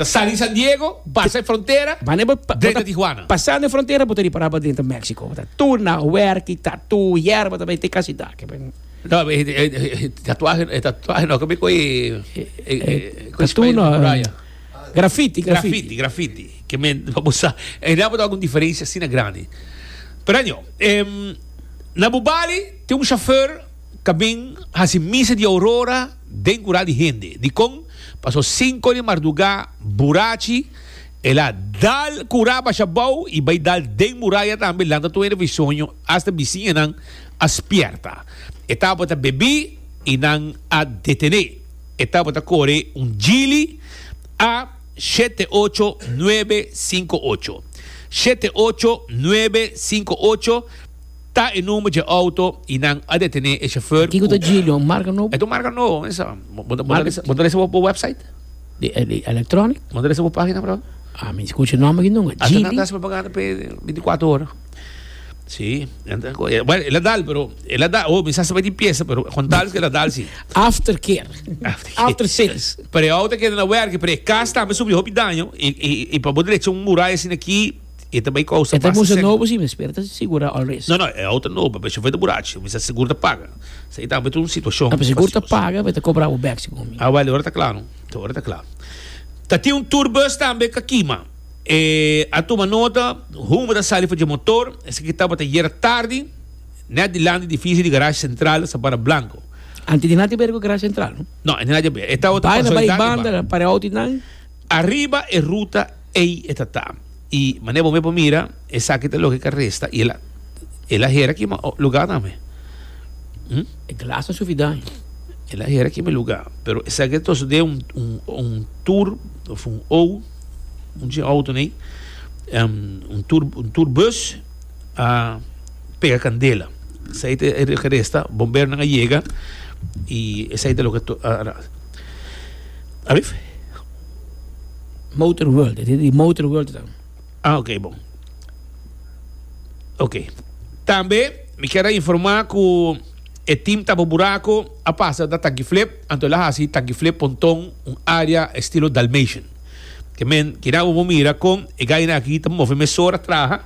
Ta sali San Diego, basa e frontera, Wanneer bo pa, drenta Tijuana. pasando e frontera bo ta ripara bo drenta Mexico, bo ta tuna, werki, tatu, yerba ta bay te casi daki men. No, e, e, e tatuaje, e tatuaje no, como cu e, e, e, cu e Tatu no, muralla. graffiti, graffiti. Graffiti, graffiti. Que men, bo sa, e na bo ta algun diferencia asina grandi. Pero año, em, na Bubali, tin un chauffeur, ta bin hasi misa di Aurora den kural di hende. Dikon? Paso sinku di mardugá burachi el a dal kurá basha bou i bai dal den muraya tambe lanta tur hende di soño asta bisiñanan a spierta. E tabata bebí i nan a detené. E tabata kore un jili a shete ocho nuebe sinku ocho. Shete ocho nuebe sinku ocho. Ta e number dje auto y nan a detene e chauffeur cu. Kiko ta dje lion? Marca nobo? E ta un marca nobo mesa. Bo ta bo ta resa bo website? Di di electronic? Bo ta resa bo pagina por awe? A mi scucha e nomber aki nunca. Ata nan ta haci propaganda p'e binti cuatro ora. Si. Bueno el a dal pero el a dal oh mi sa sa bai tin pieza pero con tal es cu el a dal si. After care. After care. After sales. Pero e auto a keda na werki pero e cas tambe a sufri hopi daño y y y pa bo derecha un muraya asina aki. E ta bai ku ousa basta segun. E ta nobo si mes pero e ta sigura all risk. No no e outa nobo pero shofer ta burachi mi sa sigur ta paga sa e tambe ta un situashon. No pero sigur ta paga pero e ta kobra bo bek segun mi. Awel ora ta kla no ta ora ta kla. Ta tin un tour bus tambe ka kima e a tuma nota humo ta sali for dje motor esaki ki tabata yera tardi net dilanti di edifisio di garashi sentral Sabana Blanco. Antes di nan ta bira ku garashi sentral no? No antes di nan ta bira e tabata konsolidá di banda. Bai na bai banda pare outo di nan. Ariba e ruta ei e ta ta. I manera bo mesmo a mira, esaki ta loke caresta i el a hera kima lugar tambe. Hm? E glas no sufri daño. El a hera kima lugar. Pero esaki ta toso den un, un, un tour of un ou, un dje auto nei, em, un tour, un tour bus a pega candela. Esaki ta e caresta, bomberonan a yega i esaki ta loke, a, a, Alif? Motor world, e tin di motor world ta. Ah, ok, bon. Ok. Tambe, mi kier a informá ku e tim Tabo Buraco a pasa na Tanki Flip, anto el a hasi Tanki Flip Ponton un área estilo Dalmatian. Ke men, kina bo por mira kon e gainan aki ta move mesora traha,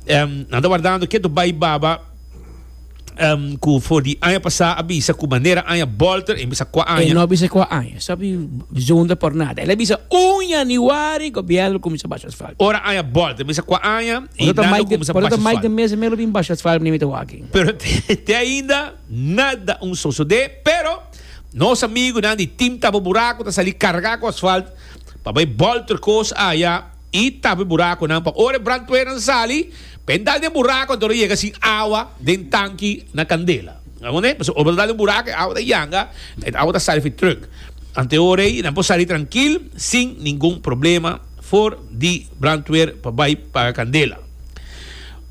nan ta wardando ke tur bai baba. ku for di aña pasá a bisa ku manera aña Bolter, e bisa kua aña. E no a bisa kua aña, sabi bijonder por nada. El a bisa un yanüari gobièrnu kuminsá basha asfalt. Ora aña Bolter bisa kua aña i nan lo kuminsá basha asfalt. Por e ta maik di mes e mei lo bin basha asfalt niña mi ta wak aki. Pero te ainda nada un sosodé, pero nos amigunan di Team Tapa Buraku ta sali kargá ku asfalt pa bai Bolter kos aya. I tap e burakonan pa ora e brandpueran sali, pa e dal den burako anto lo yega sin awa den tanki na kandela. Amoné? Pasobra ora bo ta dal den burako e awa ta yanga, e awa ta sali fi trùk. Ant e ora ei nan por sali trankil sin ningun problema for di brandpuer pa bai paga kandela.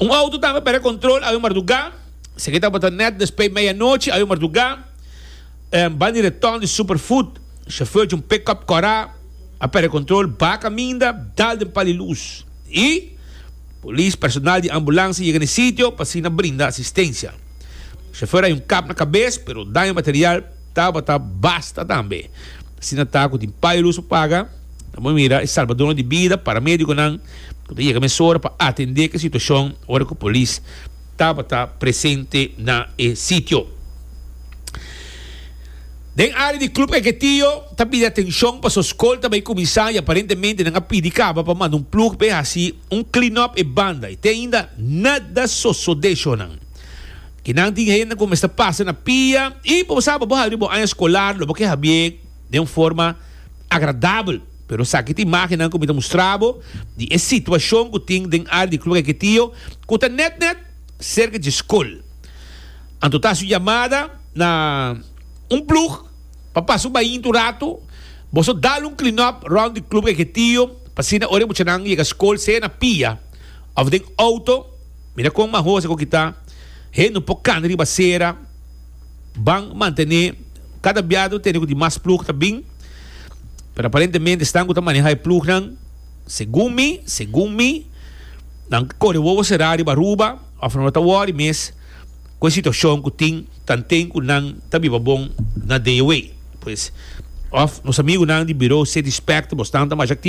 Un outo tambe pèrdè kòntròl awe mardugá, seki tabata nèt despui media nochi awe mardugá, banda di retòn di Superfood, shofèr djunpé kòp kòrá. A perde control, ba caminda, dal den pali luz y Polis, personal di ambulancia yega na e sitio pa asina brinda asistencia. Chauffeur a hay un kap na cabes, pero daño material tabata basta tambe. Asina ta cu tin pali luz a paga, nan por mira e salbadonan di bida, paramedio-gonan cu ta yega mesora pa atende cu e situacion ora cu Polis, tabata presente na e sitio. Den área di Club Eketío ta bira atenshon paso skol ta bai kuminsá i aparentemente nan a pidi kaba pa manda un plug bai hasi un clean up e banda i te ainda nada sosodé shornan ke nan tin hende ku mester pasa na pia i bo saba bo habri bo aña skolar lo bo ke habié den un forma agradabel, pero esaki ta imagennan ku mi ta mustra bo di e situashon ku tin den área di Club Caquetío ku ta nèt nèt serka dje skol. Anto ta hasi un yamada na un plug pa pasa un bahintu un ratu, boso dal un clean up rònt di Club Caquetío pa asina ora e muchanan yega skol sea na pia òf den outo, mira kon mahosa ku kita, hende no por kana riba asera. Ban mantené kada biado tene ku di mas plug ta bin, pero aparentemente esnan ku ta maneha e plugnan, segun mi, segun mi, nan kore wowo será riba Aruba of nan lo ta wòri mes ku e situashon ku tin tanten ku nan ta biba bon na DOA. Pues, of nos amigunan di Buro City Spectables nan ta masha aktivo.